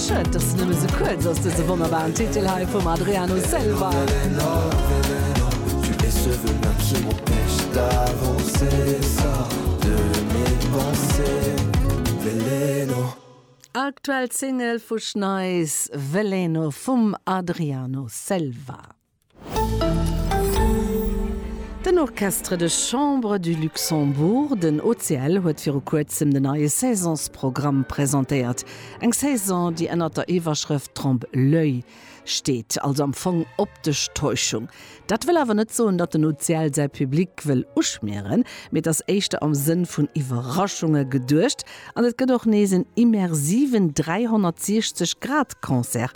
Schued dass se nëmme sou kuerz ass, dëse wonnerbaren Titel hei vum Adriano Selva. Aktuell Single vu Schneis, Veleno vum Adriano Selva. Den Orchestre de Chambre du Luxembourg, den OCL, huet viru kuerzem de neie Saisonsprogramm presentéiert. Eng Saison, déi ënnert der Iwwerschrëft Trompe l'oeil steet, also am Fong optesch Täuschung. Dat wëll awer net soen, datt den OCL säi Public wëll uschmieren, mee et ass éischter am Sënn vun Iwwerraschunge geduecht an et gëtt och nees en immersiven 360 Grad Concert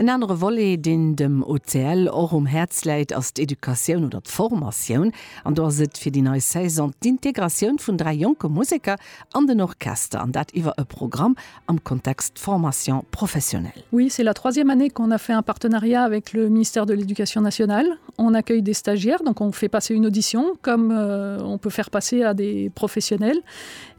En anere Volet, deen dem OCL och um Häerz läit, ass d'Educatioun oder d'Formatioun. An do ass et fir déi nei Saison d'Integratioun vun dräi jonke Museker an den Orchester, an dat iwwer e Programm am Kontext Formation professionnelle. Oui, c'est la troisième année qu'on a fait un partenariat avec le ministère de l'Éducation nationale. On accueille des stagiaires, donc on fait passer une audition comme on peut faire passer à des professionnels.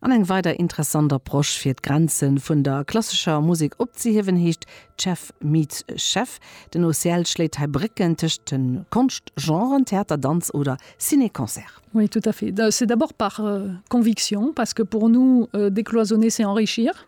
An eng weider interessant Approche fir d'Grenzen vun der klassescher Musek opzehiewen heescht Chef meets Chef. Den OCL schléit hei Brécken tëscht den Konschtgenren Theater, Danz oder Ciné-Concert. Oui, tout à fait. C'est d'abord par conviction, parce que pour nous, décloisonner c'est enrichir.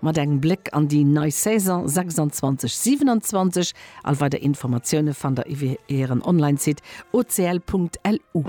Mat engem Bléck an déi nei Saison 26, 27. All weider Informatioune fannt der iwwe hiren Online-Site ocl.lu.